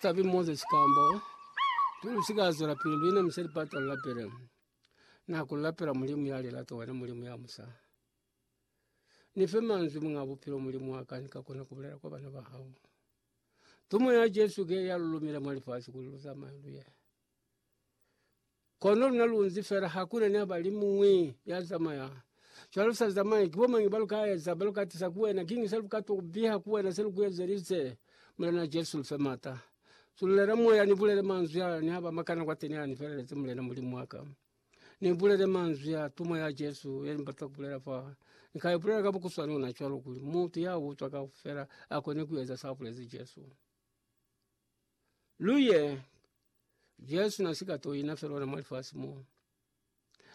Tabi Moses Kambo Lu si ka zwela pili lu inamisha lipata lu lapele na ku lapela Mulimu ya lilata, wena Mulimu ya musa. Ni fe manzwi Muñ'a Bupilo, Mulimu wa ka, ni ka kona ku bulela kwa bana ba hao. Tumo ya Jesu ke ya lu lumile mwa lifasi kuli lu zamaye lu ye. Kono luna lunzi fela hakuna ni haba limuñwi ya zamaya. Cwalo sa zamai kibo mangi ba luka eza ba lukatisa ku wena kingi se luka to kubiha ku wena se lu kuezelize. Mulena Jesu lufe mata. Sululela moya ni bulele manzwi a ni haba makana kwateni a ni felelezi Mulena Mulimu waka. Ni bulele manzwi ya tumo ya Jesu yeni bata kubulela fa. Ni ka ibulela ka bukuswana ona cwalo kuli mutu ya utwa kaufela akone kueza sa bulezi Jesu. Luye Jesu na si ka to ina fela ona mwa lifasi mo.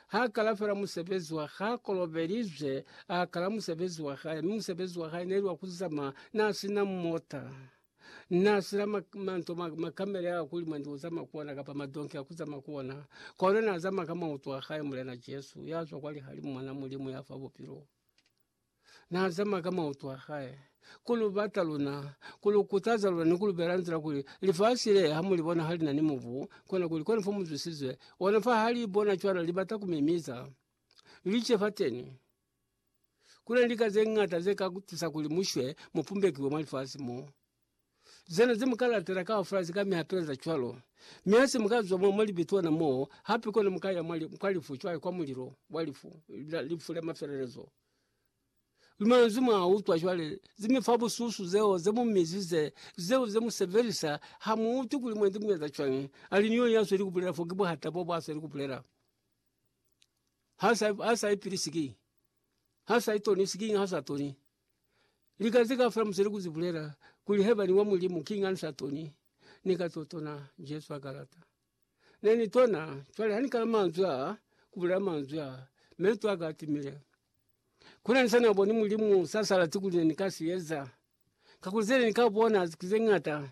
Ha kala fela musebezi wa ha kolobelizwe, a kala musebezi wa hae, mi musebezi wa hae neli wa kuzama na sina mota na sina ma- manto ma- makamele a kuli mwendi uzama kuona kapa madonki akuzama kuona kono nazama ka mauto a hae Mulena Jesu yazwa kwa lihalimu Mwana Mulimu ya fa bupilo. Na zama ka mautu a hae ku lu bata luna, ku lu kutaza luna ni ku lu bela nzila kuli lifasi le ha mu li bona ha li na ni mubu, kona kuli kona fa mu zwisize ona fa ha li bona cwana li bata ku mimiza, li ce fateni. Ku na ni lika ze ñata ze ka ku tusa kuli mu shwe mu pumbekiwe mwa lifasi mo. Zena ze muka latela kaufela zika mi apeza cwalo. Mi hase muka zwa mwa libitona moo, hape kona muka ya kwa lifu cwale, kwa mulilo wa lifu, lifu la mafelelezo. Ki manzwi mwa utwa cwale, ze mi fa bususu zeo ze mu mizize, zeo ze mu sebelisa, ha mu utwi kuli mwendi mu eza cwañi. Ali niyo ya sweli kubulela fo, ki buhata bo bwa sweli kubulela. Ha sa ipilisi ki, ha sa itonisi, kiñi ha sa toni? Lika zika fela musele kuzi bulela kuli heba ni wa mulimu king ansa toni ni ka to tona jesu a kalata ne ni tona cwale ha ni kala manzwi a kula manzwi a meto aka timile kule nse na boni mulimu sasa la tukule ni kasi eza kakuzele ni ka bona zikuze ngata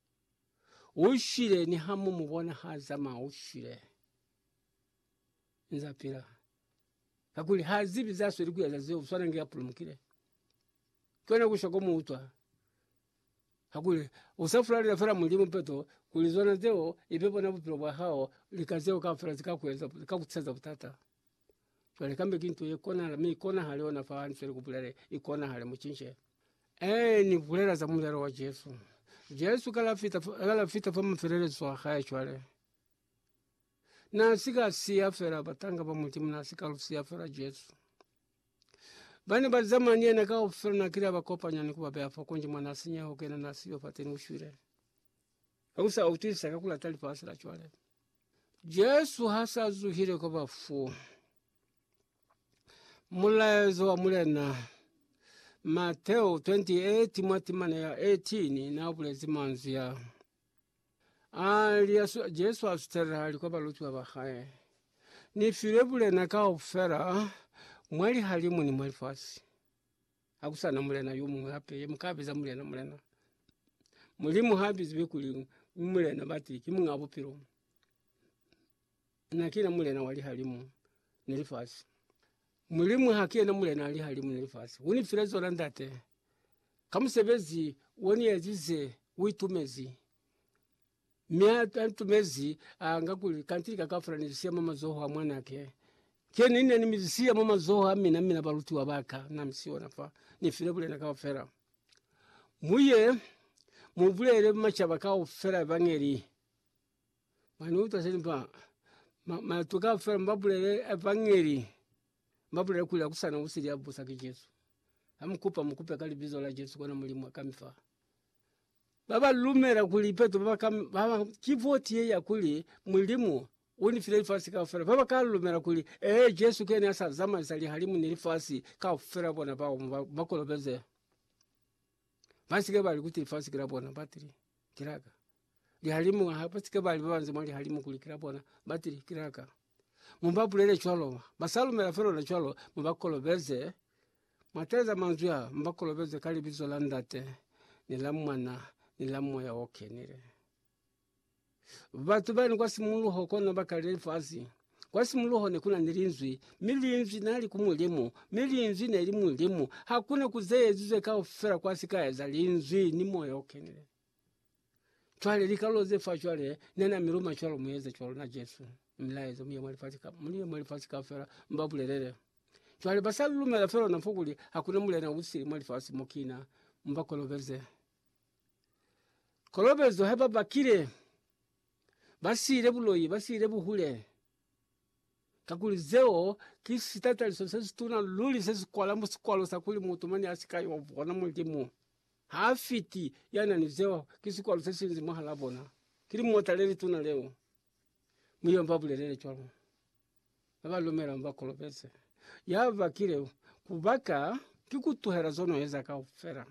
U shile, niha mu mu bona ha zamaya, u shile. Nza pila. Kakuli ha zibi za sweli ku eza zeo, swana nge a pulumukile. Kona ku shwa ko mu utwa. Kakuli u sa fulalela fela Mulimu peto, kuli zona zeo ibe bona bupilo bwa hao, lika zeo kaufela zika ku eza, zika ku tiseza butata. Cwale kambe ki nto ye konahala, mi ikonahale ona fa nze ni ku bulela, ikonahale mucince. Ee, Ni bulela za mulelo wa Jesu. Jesu kala fita, kala fita fa mafelelezo a hae cwale. Na si ka siya fela batanga ba Mulimu, na si ka lu siya fela Jesu. Ba ne ba zamana ni yena kaufela, na kile a ba kopanya ni ku ba beya fa kunji mwa na sinyeho, kena na siyo fateni, u shwile. Ka ku sa utwisa ka ku lata lifasi la cwale. Jesu ha sa zuhile kwa bafu, mulaezo wa Mulena Mateo 28 mwa timana ya 18 na bulezi manzwi ya. Ali asu- Jesu asutela ali kwa balutiwa ba hae, Ni filwe bulena kaufela mwa lihalimu ni mwa lifasi. akusana mulena yo muñwi hape ye muka biza mulena mulena. Mulimu ha bizilwe kuli u mulena bati ki muñ'a bupilo, na kina mulena wa lihalimu ni lifasi. Mulimu ha ki yena mulena wa lihalimu ni lifasi, u ni file zona Ndate ka musebezi o ni ezize, u itumezi. Mi a ntumezi, a nga kuli, Kanti lika kaufela ni li siya mwa mazoho a Mwanake. Ki ni ne ni mi siya mwa mazoho a mina, mina balutiwa ba ka. Na mi siona fa. Ni file bulena kaufela. Mu ye, mu bulele macaba kaufela Evangeli. Mwa ni uta se ni fa? Matu kaufela mu ba bulele Evangeli. Mu ba bulele kuli hakusana usili ya busa ki Jesu. Ha mu kupa, mu kupe ka Libizo la Jesu, kona Mulimu a ka mi fa. Ba ba lumela kuli Petro ba ka ba ba ki voti ye ya kuli Mulimu u ni file lifasi kaufela, ba ba ka lumela kuli ee Jesu kene a sa zamaisa lihalimu ni lifasi kaufela bona bao mu ba, ba kolobeze. Ba si ke ba li kuti lifasi ki la bona, batili ki la ka. Lihalimu ha ba si ke ba li ba banze mwa lihalimu kuli ki la bona, batili ki la ka. Mu ba bulele cwalo. Ba sa lumela fe lona cwalo, mu ba kolobeze. Mwa taeza manzwi a, mu ba kolobeze ka Libizo la Ndate, ni la Mwana, ni la Moya o Kenile. Batu bani kwa simuluho kono ba kalile lifasi. Kwa simuluho ne ku na ni Linzwi, mi Linzwi na li ku Mulimu, mi Linzwi ne li Mulimu. Ha ku na ku ze ezizwe kaufela kwa si ka eza Linzwi ni Moya o Kenile. Cwale likalolo ze fa cwale ne na mi luma cwalo mu eze cwalo na Jesu milayezo mu ye mwa lifasi ka mu ye mwa lifasi kaufela mu ba bulelele. Cwale ba sa lumela fela lona fo kuli hakuna mulena u sili mwa lifasi mo kina mu ba kolobeze. Kolobezo ha ba bakile ba siile buloi ba siile buhule kakuli zeo ki sitataliso se situna luli se si kwala mu sikwalo sa kuli mutu mane a si ka yo bona Mulimu. Ha a fiti, ya na ni zeo ki sikwalo se sinzi mwahalaa bona. Ki limota le lituna leo. Mi yo ba bulelele cwalo. Ba ba lumelang ba kolobeze. Ya bakile ku baka ki ku tuhela zo no eza kaufela.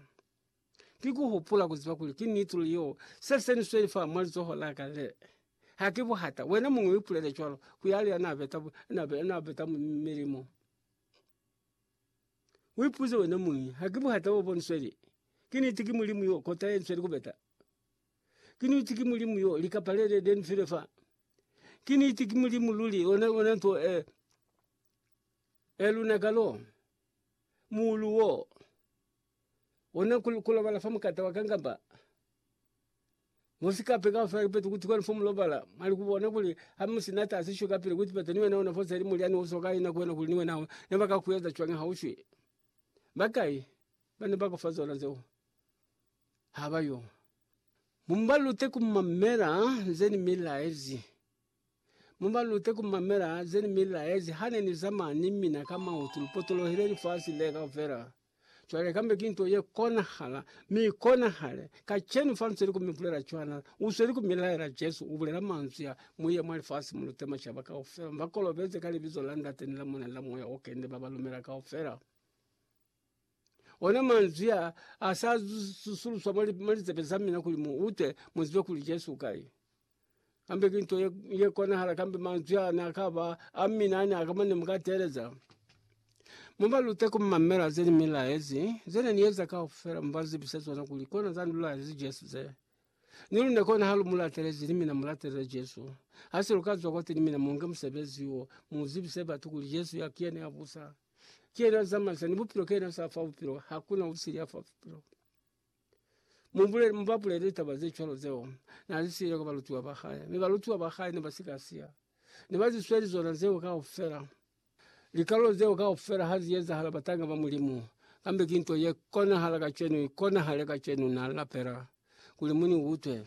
Ki ku hupula ku ziba kuli ki nituli yo se se ni sweli fa mwa lizoho la ka le. Ha ki buhata. Wena muñwi u ipulele cwalo ku yale ya na beta, na beta milimo. U ipuze wena muñi, Ha ki buhata bo bonisweli? Ki niti ki Mulimu yo, kota ye nsweli ku beta? Ki niti ki Mulimu yo, lika palele le ni file fa? Ki niti ki Mulimu luli, ona, ona nto e, e lunaka lo, muulu wo? Ona ku, kulobala fa mukata wa kangamba musikape kaufela kipeto kuti kwenu fo mulobala mwali kubona kuli ha musi na tasi sho kapili kuti peto ni wena ona fose ili mulyani uso ka ina kwenu kuli ni wena ho ne baka kueza cwani ha ushwi. Bakai bane bako fa zona zeo? Haba yo. Mubalute kumamela nze ni milaezi. Mu ba lute ku mamela ze ni mi laezi ha ne ni zamaya ni mina ka mautu. Lu potolohile lifasi le kaufela. Cwale kambe ki nto ye konahala, mi i konahale kacenu fa lu sweli ku mi bulela cwana. U sweli ku mi laela, Jesu u bulela manzwi a, Mu ye mwa lifasi, mu lute macaba kaufela. Mu ba kolobeze ka Libizo la Ndate ni la Mwana ni la Moya o Kene, ba ba lumela kaufela. Ona manzwi a a sa susuluswa mwa litsebe za mina kuli mu ute, mu zibe kuli Jesu u kai. Kambe ki nto ye, ye konahala kambe manzwi a ne a ka ba a mina a ne a ka mane mu ka teeleza. Mu ba lute ku mamela ze ni mi laezi, ze ne ni eza kaufela mu ba zibisa zona kuli kona za ni laezi Jesu ze. Ni lune kona ha lu mu latelezi ni mina mu latelele Jesu. Ha se lu ka zwa kwati ni mina mu nge musebezi wo, mu zibise batu kuli Jesu ya ki yena ya busa, ki yena ya zamaisa, ni bupilo ki yena ya sa fa bupilo, ha ku na usili ya fa bupilo. Mu bulele, mu ba bulele litaba ze cwalo zeo na li siile kwa balutiwa ba hae. Mi balutiwa ba hae ne ba si ka siya. Ne ba zi sweli zona zeo kaufela. Likalolo zeo kaufela ha zi ezahala, batanga ba Mulimu, kambe ki nto ye konahala kacenu, i konahale kacenu. Na lapela kuli mu ni utwe.